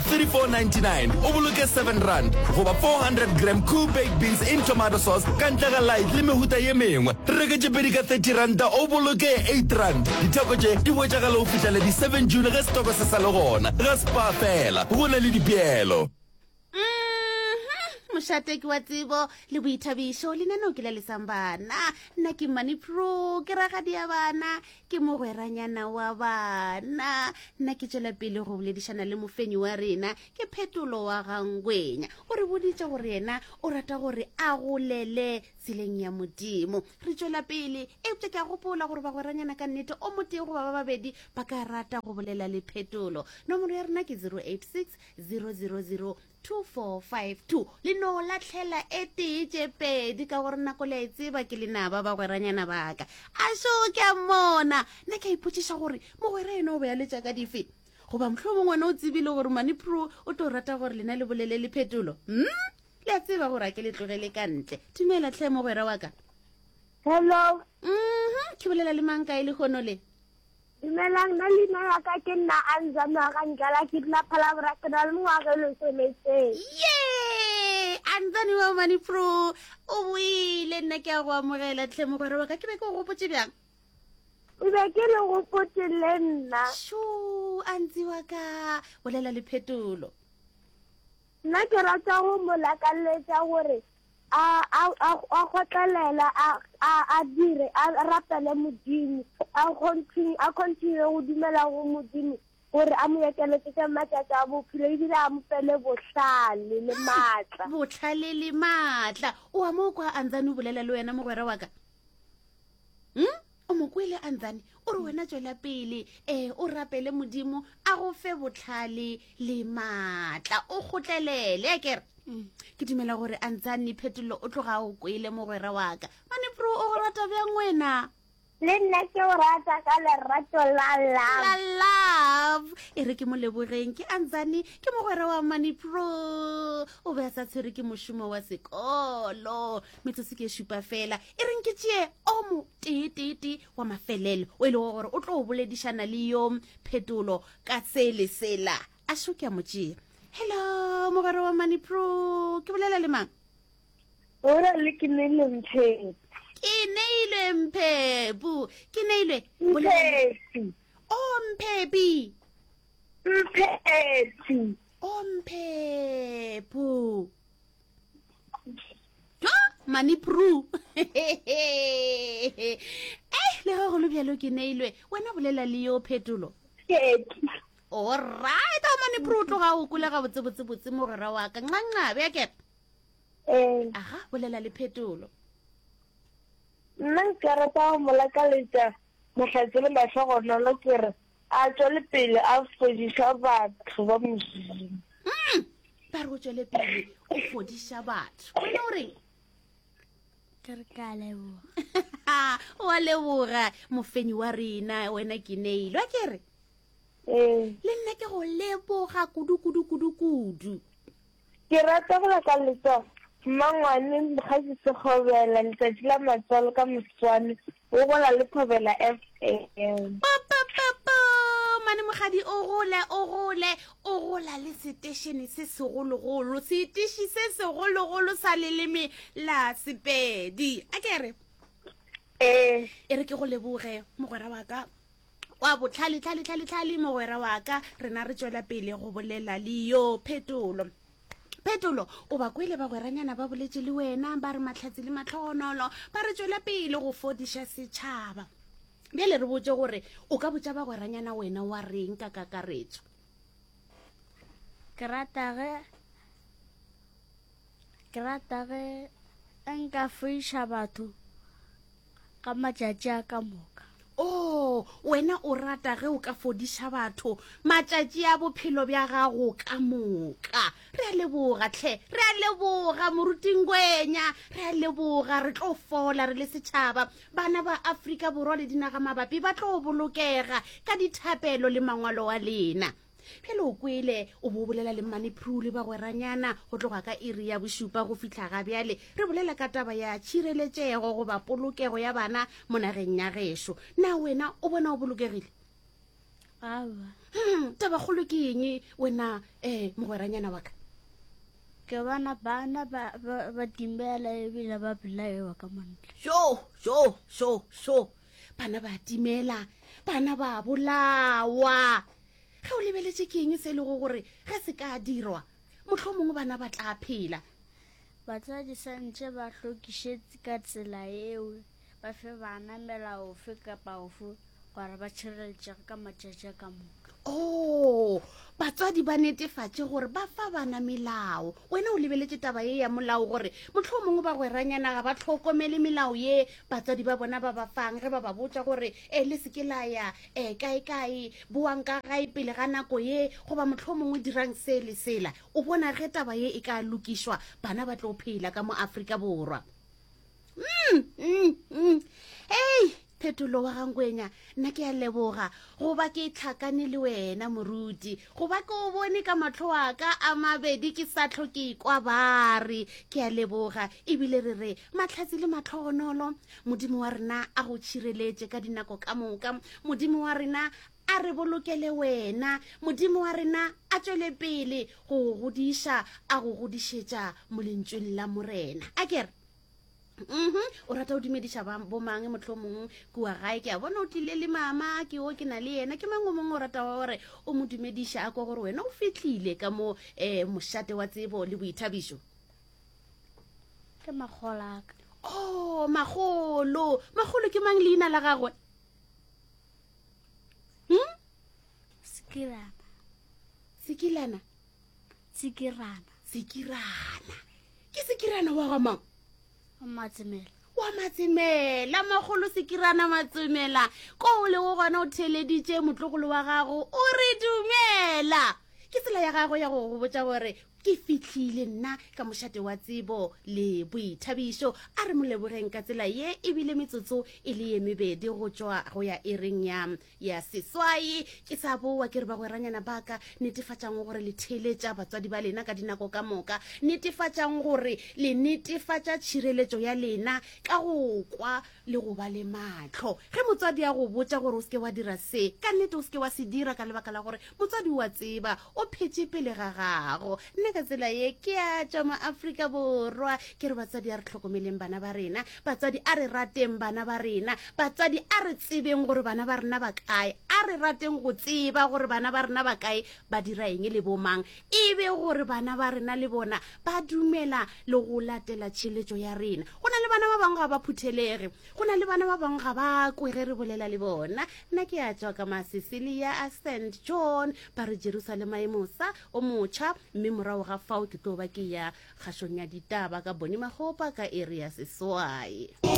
34.99 o boloke 7 rand goba 400 gram cool baked beans in tomato sauce ka ntle ga light le mehuta ye mengwe reke tše pedi ka 30 ranta o boloke 8 rand ditheko tše di hwetšagala go fihla le di 7 june ge setoko se sa le gona ga spa fela go na le dipeelo mm-hmm. mošateki wa tsebo le boithabišo lenaneo ke la lesang bana nna ke money pro ke ragadi ya bana ke mogweranyana wa bana nna ke tšwela pele go boledišana le mofenyi wa rena ke phetolo wa gangwenya o re boditše gore yena o rata gore a golele tseleng ya modimo re tšwela pele eupša ke a gopola gore bagweranyana ka nnete o motee goba ba babedi ba ka rata go bolela le phetolo nomoro ya rena ke 086 000 2452 le no latlhela e tee tše pedi ka gore nako le a e tseba ke lena ba bagweranyana baka a šo ke a mona ne ka ipotšiša gore mogwera eno o be a letša ka dife goba mohlho mongwe ne o tsebile gore manipro o tlo rata gore lena le bolele le phetolo mm? le a tseba gore a ke le tlogele ka ntle dumela tlhe mogwera wa ka hello mm -hmm. ke bolela le manka e le gono le Dumelang, na leina la ka ke nna Anza Noaga Ndlala, ke dula Phalabora, ke na le mengwaga e lesometee. Ye! Anzani wa mane pro, o boile, nna ke a go amogela. Tlhe mogwera wa ka, ke be ke o gopotse bjang? Ke be ke le gopotse le nna. Sho, Anzi wa ka, bolela le phetolo. Nna ke rata go mo lakalletša gore a, a, a, a kgotlelela, a, a, a dire, a rapele Modimo, a continue, a continue go dumela go Modimo gore a mo ekeletšetše matšatši a bophelo ebile a mo fele bohlale le maatla. Bohlale le maatla. O a mo kwa a ntsane o bolela le wena, mogwera wa ka? Hm? o mo kwele a ntsane o re wena tswela pele um o rapele modimo a go fe botlhale le maatla o kgotlelele kere mm. ke dumela gore a ntsane phetolo o tloga o kwele mogwera waka manepro o go rata bjang wena le nna ke o rata ka lerato la love love e re ke mo lebogeng ke antsane ke mogwera wa money pro o be a sa tshwere ke mošomo wa sekolo metsotso ke e šupa fela e reng ke tšee o mo teeteete wa mafelelo o e lego gore o tlo o boledišana le yo phetolo ka se le sela a šo ke a mo tšea hello mogwera wa money pro ke bolela le mang ora le ke ne le mphe ke ne ile mphe bu ke ne ile mphe o oh, mphe bi mphe o oh, mphe bu mami pru eh le ge golo bjalo ke neilwe wena bolela le yo phetolo orit a mane pru o tloga o kolega botsebotsebotse mogwera wa ka ncanca bja kere eh. aga bolela le phetolo nna nka rata go mo lakaletša mahlatse le mahlogonolo kere A tšwelepele a fodiša batho ba Modimo. Mm, ba re o tšwelepele o fodiša batho. Wena o reng? ke re ka leboga wa leboga mofenyi wa rena wena ke neile wa ke re ee. le nna ke go leboga kudu kudu kudu kudu Ke rata go leka letso mmangwane Mokgasi Sekgobela letsatsi la matswalo ka moswane o gola le Thobela FM. Popopopo mane mogadi o gole o gole o gola le setešene se segologolo seteši se segologolo sa leleme la sepedi a kere ee e re ke go leboge mogwera wa ka wa botlhale tlhale tlhale tlhale mogwera wa ka rena re tswela pele go bolela le yo phetolo phetolo o ba kwele bagweranyana ba boletse le wena ba re matlhatsi le matlhogonolo ba re tswela pele go fodiša setšhaba bjale re botse gore o ka botsa bagweranyana wena wa reng ka kakaretso ke rata ge Ke rata ge nka foiša batho ka matšatši a ka moka o oh, wena o rata ge o ka fodiša batho matšatši a bophelo bja gago ka moka re a leboga tlhe re a leboga morutingwenya re a leboga re tlo fola re le setšhaba bana ba afrika borwa le dinaga mabapi ba tlo bolokega ka dithapelo le mangwalo wa lena pele o kwele o bo bolela le mmane pru le bagweranyana go tloga ka iri ya bošupa go fitlha ga bjale re bolela ka taba ya tšhireletšego goba polokego ya bana mo nageng ya gešo na wena o bona o bolokegile aba hmm, taba kgolo ke eng wena um mogweranyana wa ka ke bona bana ba timbela ebile ba belaewa ka mantle so so so so bana ba timela bana ba bolawa ge o lebeletše ke eng se e lego gore ge se ka dirwa motlho mongwe bana ba tla phela batswadi santšhe ba hlokišetse ka tsela eo ba fe bana melaofe kapa ofe gore ba tšhireletšege ka matšatši a ka moka oo batswadi ba netefatše gore ba fa bana melao wena o lebeletše taba ye ya molao gore motlho o mongwe ba gweranyana ga ba tlhokomele melao ye batswadi ba bona ba ba fang ge ba ba botsa gore e le seke la ya um kae kae boang ka gae pele ga nako ye goba motlho o mongwe dirang se le sela o bona ge taba ye e ka lokišwa bana ba tlo phela ka mo aforika borwa mm, mm, mm. ei phetolo wa gangwenya nna ke a leboga goba ke tlhakane le wena moruti goba ke o bone ka matlho a ka a mabedi ke sa tlho ke kwa bare ke a leboga ebile re re matlhatsi le matlhogonolo modimo wa rena a go tšhireletše ka dinako ka moka modimo wa rena a re bolokele wena modimo wa rena a tswele pele go go godiša a go godišetša molentšweng la morena a kere um o rata o dumediša bomang motlho mongwe kua gae ke a bona o tlile le mama ke o ke na le yena ke mangwe mongwe o rata wa gore o mo dumediša a kwa gore wena o fitlhile ka mo um mošate wa tsebo le boithabišo ke magolaka o oh, magolo magolo ke mang leina la gagwe um sekilana sekilana tsikirana tsikirana ke tsikirana wa ga mang matsemela wa matsemela magolo sekirana matsemela ko o lego gona o theleditše motlogolo wa gago o re dumela ke tsela ya gago ya go go botsa gore ke fitlhile nna ka mošate wa tsebo le boithabišo a re molebogeng ka tsela ye ebile metsotso e le ye mebedi go tswa go ya e reng ya ya seswai ke sa bowa ke re bagweranyana ba ka netefatšang gore le theeletša batswadi ba lena ka dinako ka moka netefatšang gore le netefatša tšhireletšo ya lena ka go kwa le go ba le matlho ge motswadi ya go botša gore o seke wa dira se ka nnete o seke wa se dira ka lebaka la gore motswadi wa tseba o phetše pele ga gago nna ka tsela ye ke a tšwa mo aforika borwa ke re batsadi a re tlhokomeleng bana ba rena batsadi a re rateng bana ba rena batsadi a re tsebeng gore bana ba rena ba kae a re rateng go tseba gore bana ba rena ba kae ba dira eng le bomang e be gore bana ba rena le bona ba dumela le go latela tšheletšo ya rena go na le bana ba bangwe ga ba phuthelege go na le bana ba bangwe ga ba kwe ge re bolela le bona nna ke a tšwa ka masesilia a st john ba re jerusalema e mosa o motšha mme morago ga fao ke tlo ba ke ya kgašong ya ditaba ka bone magopa ka area seswae